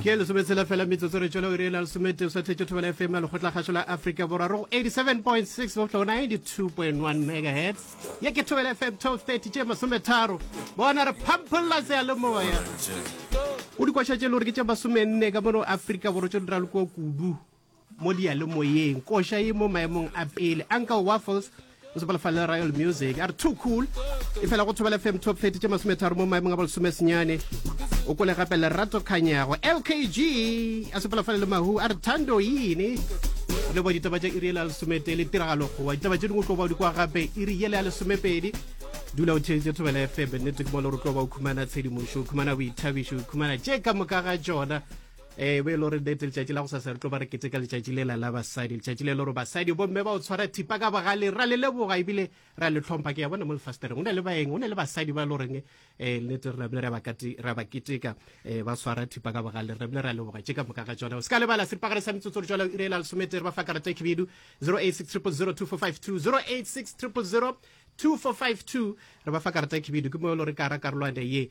ke lesometshela fela metsotso re tšwela iri e la lesomete o sa tletše thobela fm ya lekgotlakgašo la afrika borwa re go 87.6 boflo 92.1 megahertz ye ke thobela fm 1230 tše masometharo bona re phampholla seyalemoya o dikwaša tše le gore ke tše masomenne ka mono afrika borwa tše dira le kua kudu mo diyalemoyeng koša e mo maemong a pele uncle waffles o sepela fa le royal music a re too cool e fela go thobela fm top 30 tše masometharo mo maemong a bolesome senyane o kole gape lerato kganyago lkg a sepela fale le mahu a re thando yini le bo ditaba tša iri yela lesomete le tiragalo gowa ditaba tše dingwe tlo ba di kwa gape iri yela ya lesomepedi dula o theeditse thobela fm nnete ke mo le re tlo ba o khumana tshedimošo o khumana boithabišo o khumana tše ka moka ga tšona e be e le gore date letšatši la go sasa re tlo ba re kete ka letšatši lela la basadi letšatši le le gore basadi bomme ba o tshwara thipa ka bogale ra le leboga ebile ra le tlhompha ke ya bona mo lefastereng go ne le baeng go ne le basadi ba e le goreng um eh, nnete re rabile ra ba keteka um ba tshwara thipa ka bogale re rabile ra leboga tše ka moka ga tsona o se ka lebala seripagare sa metsotso re tswala o irela lesometere ba fa karata khibidu 086 000 2452 086 000 2452 re ba fa karata khibidu ke mo e le gore ka ra karolwane ye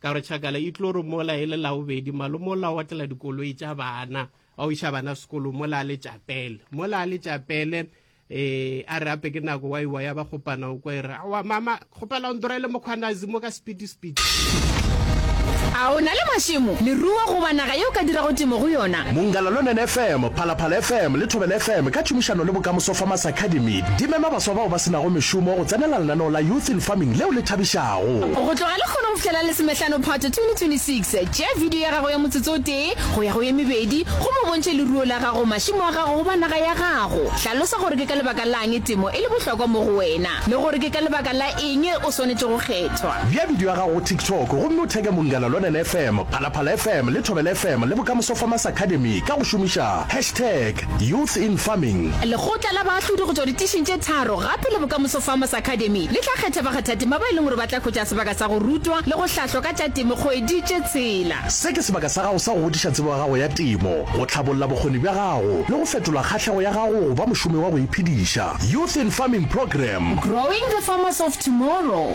Ka gore Chakala e tlo re mola e le Laobedi, malome o la otlela dikoloi tša bana, a o iša bana sekolong, mola a le tšapele. Mola a le tšapele, eh, a re ape ke nako wa iwa ya ba kgopana o kwa e re, awa mama, kgopela o ntorele mokgwanazi mo ka sepiti-sepiti. A o na le mašemo, leruo goba naga yeo o ka dirago temo go yona? Mongalalonen FM, Phalaphala FM le Thobela FM ka tšhomišano le Bokamoso Farmers Academy di mema baswa bao ba se nago mešomo go tsenela lenaneo la Youth in Farming leo le thabišago. go. Go tloga lehono go fihlela Lesomehlano Phato 2026, tšea video ya gago ya motsotso o tee go ya go ye mebedi gomme o bontšhe leruo la gago, mašemo a gago goba naga ya gago. Hlalosa gore ke ka lebaka la'ng temo e le bohlokwa mo go wena le gore ke ka lebaka la eng o swanetše go kgethwa. Bea video ya gago go TikTok gomme o tag-e Mongala Lonene FM, Phalaphala FM le Thobela FM le Bokamoso Farmers Academy ka go šomiša hashtag. Youth in Farming. Lekgotla la Baahlodi go tšwa ditišing tše tharo gape le Bokamoso Farmers Academy le tla kgetha bakgathatema ba e leng gore ba tla hwetša sebaka sa go rutwa le go hlahlwa ka tša temo kgwedi tše tshela. Se ke sebaka sa gago sa go godiša tsebo ya gago ya temo, go tlhabolla bokgoni bja gago le go fetola kgahlego ya gago go ba mošomi wa go iphediša. Youth in Farming Programme. Growing the Farmers of Tomorrow.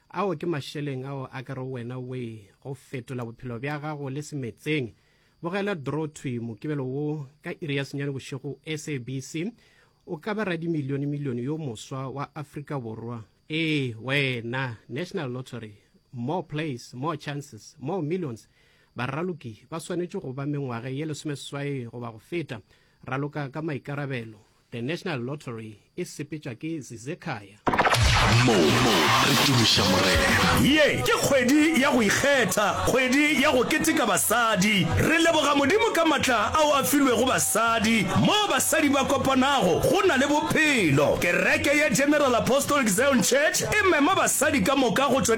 Ao ke mašeleng ao a ka re wena we go fetola bophelo bja gago le semetseng. Bogela Draw Thwi Mokibelo wo ka iri ya senyane bošego SABC O ka ba radimilionemilione yo moswa wa Afrika Borwa. Ee, wena! National Lottery More plays, more chances, more millions Baraloki ba swanetše go ba mengwage ye lesomeseswai goba go feta. Raloka ka maikarabelo. The National Lottery e sepetšwa ke Zizekhaya. Mo re tumiša Morena. Ye ke kgwedi ya go ikgetha, kgwedi ya go keteka basadi. Re leboga Modimo ka matla ao a filwego basadi. Moo basadi ba kopanago, go na le bophelo. Kereke ya General Apostolic Zion Church e mema basadi ka moka go tšwa